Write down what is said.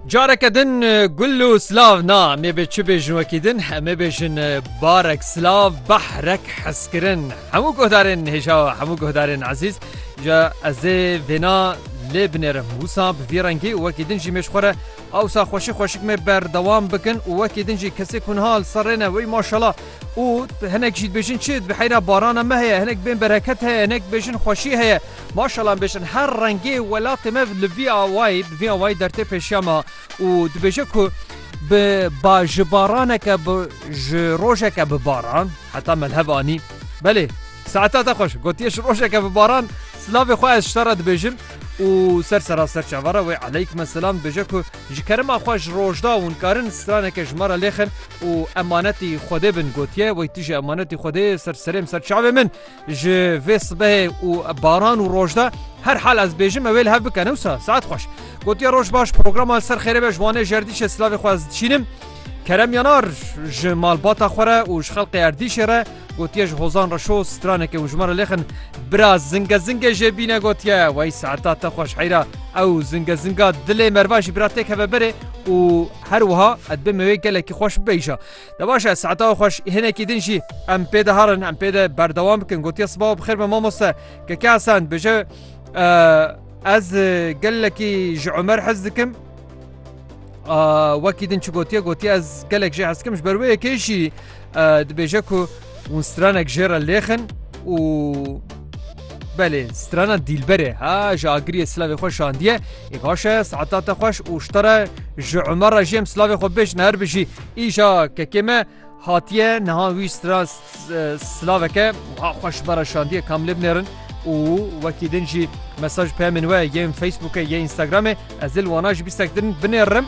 Careke din gul û silav na mêbê çi bêjin wekî din hemê bêjin barek silav behrek hezkirin hemû guhdarên hêja hemû guhdarên ezîz ja ezê vêna lê binêrim wisa bi vî rengî wekî din jî mêşxwere awsa xweşî xweşik me berdewam bikin û wekî din jî kesê kunha li ser rêne wey maşala û hinek jî dibêjin çi bi heyra barana me heye hinek bên bereket heye hinek bêjin xweşî heye Maşallah em bêjin her rengê welatê me li vî awayî bi vî awayî der tê pêşiya me û dibêje ku bi ba ji baraneke bi ji rojeke bi baran heta melhev anî belê saeta te xweş gotiye ji rojeke bi baran silavê xwe ez ji te re dibêjim û ser sera ser çava re wê eleykme silam dibêje ku ji kerema xwe ji rojda hûn karin straneke ji me re lêxin û emanetî xwedê bin gotiye wey tu jî emanetî xwedê ser serê min ser çavê min Ji vê sibehê û baran û roj de her hal ez bêjim ew ê li hev bike ne wisa saet xweş. Gotiye roj baş programa li ser xêrê be ji Wanê ji Erdîşê silavê xwe ez dişînim. Kerem Yanar ji malbata xwe re û ji xelqê Erdîşê re gotiye ji Hozan Reşo straneke û ji me re lêxin bira zinge zingê jê bîne gotiye wey saeta te xweş heyra ew zinge zinga dilê merva jî bira têk heve berê û her wiha ez bê me wê gelekî xweş bibêjî. De baş e saeta xwe hinekî din jî em pê de herin em pê de berdewam bikin gotiye siba bi xêr me mamoste keke esen bije ez gelekî ji Ömer hez dikim wekî din çi gotiye gotiye ez gelek jê hezkim ji ber wê yekê jî dibêje ku Hûn stranek jê re lêxin û belê strana dîlberê ha ji agiriyê silavê xwe şandiye ê baş e saeta te xweş û ji te re ji Umer re jê em silavê xwe bêjin her bijî îja kekê me hatiye niha wî stra silaveke wiha xweş bara şandiye kam lê binêrin û wekî din jî mesaj peyamên we yên Facebookê yê Instagramê ez dil wana ji bîstek din binêrim.